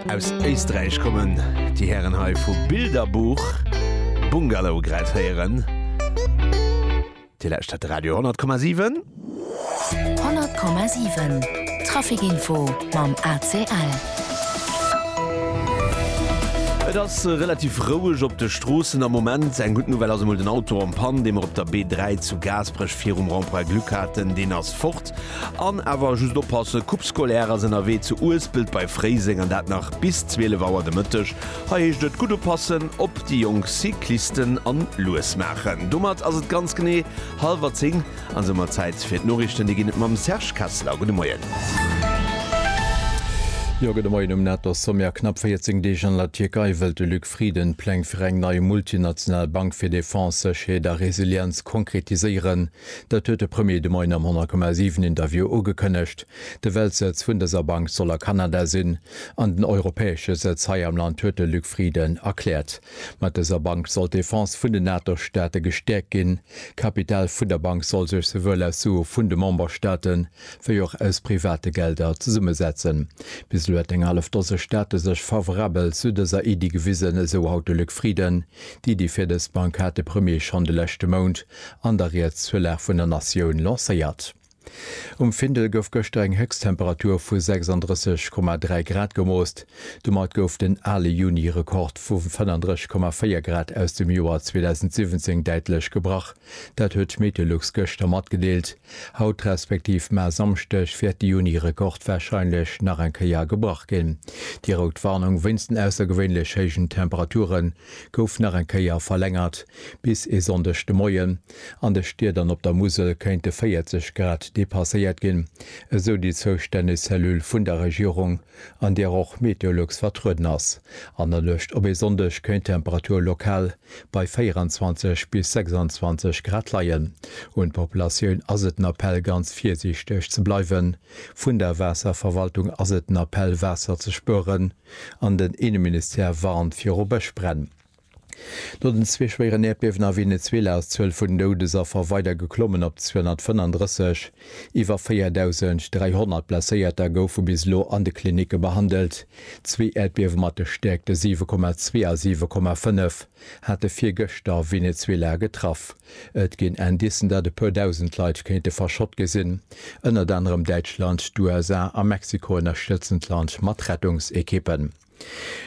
Aus Éisträich kommen déi Hären hei vu Bilderbuch Bungalow grad héieren. Dir lauschtert Radio 10,7. 100,7 Trafikinfo mam ACL. Et ass relativ roueg op de Stroossen am Moment. Eng gutt Nouvelle ass emol den Auto am Pann, dee mer op der B3 zu Gaasperech virum Rond-Point Glück haten, deen ass fort. An awer just oppassen, Coupe scolaire ass ënnerwee zu Uespelt bei Fréiseng an dat nach bis 12 Auer de Mëtteg. Hei heescht et gutt oppassen op déi jonk Cyclisten a lues maachen. Domat ass et ganz genee hallwer 10 an soumat Zäit fir d'Noriichten. Déi ginn et mam Serge Kessler. Gudde Moien. Jo, gudde Moien. Um Nato Sommet a knapp 14 Deeg an der Tierkei wëllt de Luc Frieden d'Pläng fir eng nei multinational Bank fir Defense, Sécherheet a Resilienz konkretiséieren. Dat huet de Premier de Moien am 100,7 Interview ugekënnegt. De Weltsëtz vun dëser Bank soll a Kanada sinn an den europäesche Sëtz hei am Land, huet de Luc Frieden erkläert. Mat dëser Bank soll d'Defense vun den NATO-Staate gestäerkt ginn. D'Kapital vun der Bank soll sech souwuel aus Sue vun de Memberstaate wéi och aus private Gelder zesummesetzen. Bis elo hätt eng hallef Dose Staate sech favorabel zu dëser Iddi gewisen, esou haut de Luc Frieden. D'Iddi fir dës Bank hat de Premier schonn de leschte Mount An der Rieds zur Lag vun der Natioun lancéiert. Um Findel gouf gëschter eng Héchsttemperatur vu 36,3 Grad gemoosst. Domat gouf den ale Juni-Rekord vu 35,4 Grad aus dem Joer 2017 däitlech gebrach. Dat huet d'Meteolux gëschter matgedeelt. Haut respektiv mar Samschdeg wäert de Juni-Rekord warscheinlech nach eng Kéier gebrach ginn. Déi rout Warnung wéinst den aussergewéinlech héijen Temperature gouf nach eng Kéier verlängert. Bis e Sonndeg de Moien an de Stied an op der Musel kéinte 40 Grad depasséiert ginn, esou déi zoustänneg Cellule vun der Regierung, an där och Meteolux vertrueden ass. An der Nuecht op e Sonndeg kéint d'Temperatur lokal bei 24 bis 26 Grad leien. Un d'Populatioun ass et den Appell, ganz virsiichteg ze bleiwen. Vun der Waasserverwaltung ass et den Appell, Waasser ze spueren an den Inneministère warnt viru Bëschbränn. No den zwee schwéieren Äerdbiewen a Venezuela ass d'Zuel vun den Doudesaffer weider geklommen op 235. Iwwer 4.300 Blesséierter goufe bis elo an de Klinicke behandelt. Zwee Äerdbiewe mat de Stäerkte 7,2 a 7,5 hate virgëschter Venezuela getraff. Et ginn Indicen, datt e puer Dausend Leit kéinte verschott gi sinn. Ënnert anerem Däitschland, d'USA a Mexiko ënnerstëtzen d'Land mat Rettungsekippen.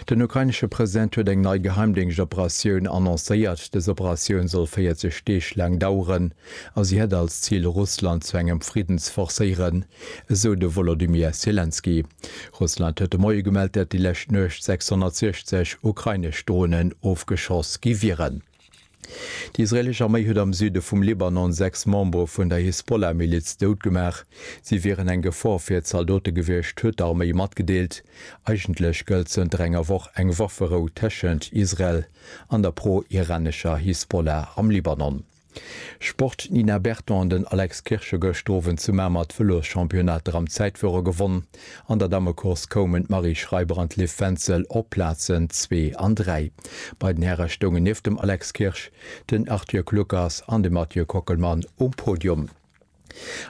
Den ukrainesche President huet eng nei Geheimdéngschtoperatioun annoncéiert. Dës Operatioun soll 40 Deeg laang daueren a si hätt als Zil, Russland zu engem Fridden ze forcéieren, esou de Wolodymyr Selenskyj. Russland huet de Moie gemellt, datt déi lescht Nuecht 660 ukrainesch Dronen ofgeschoss gi wieren. Déi israeelesch Arméi huet am Süde vum Libanon sechs Membere vun der Hisbollah-Miliz doutgemaach. Si wieren eng Gefor fir d'Zaldote gewiescht, huet d'Arméi matgedeelt. Eigentlech gëllt zënter enger Woch eng Wafferou tëschent Israel an der pro-iranescher Hisbollah am Libanon. Sport, D'Nina Berton an den Alex Kirsche gëscht Owend zu Mamer d'Vëloschampionnat der am Zäitführer gewonnen. An der Dammecourse koumen d'Marie Schreiber an d'Liv Wenzel op d'Plazen zwee an dräi. Bei den Häre stoungen nieft dem Alex Kirsch, den Arthur Kluckers an de Mathieu Kockelmann um Podium.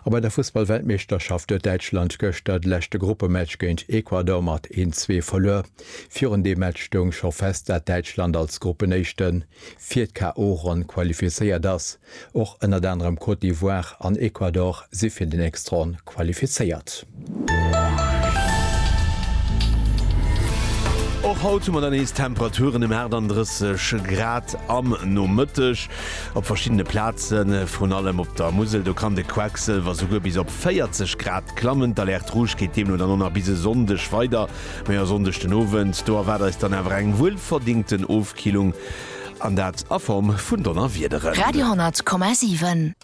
A bei der Fussballweltmeeschterschaft huet Däitschland gëschter de leschte Gruppematch géint Ecuador mat een zwee verluer. Virun deem Match stoung scho fest, dat Däitschland als Gruppenéischten fir d'KO-Ronn qualifizéiert ass. Och ënnert anerem Côte d'Ivoire an Ecuador si fir den Extraon qualifizéiert. Och haut hu mer dann nees Temperaturen ëm 38 Grad am Nomëtteg. Op verschiddene Plazen, vrun allem op der Musel, do kann de Quecksëlwer souguer bis op 40 Grad klammen. D'Alerte rouge geet deemno dann och nach bis e Sonndeg weider. Mee e Sonndeg den Owend, do erwaart eis dann awer eng wuelverdingten Ofkillung An dat a Form vun Donnerwiederen. Radio 100,7.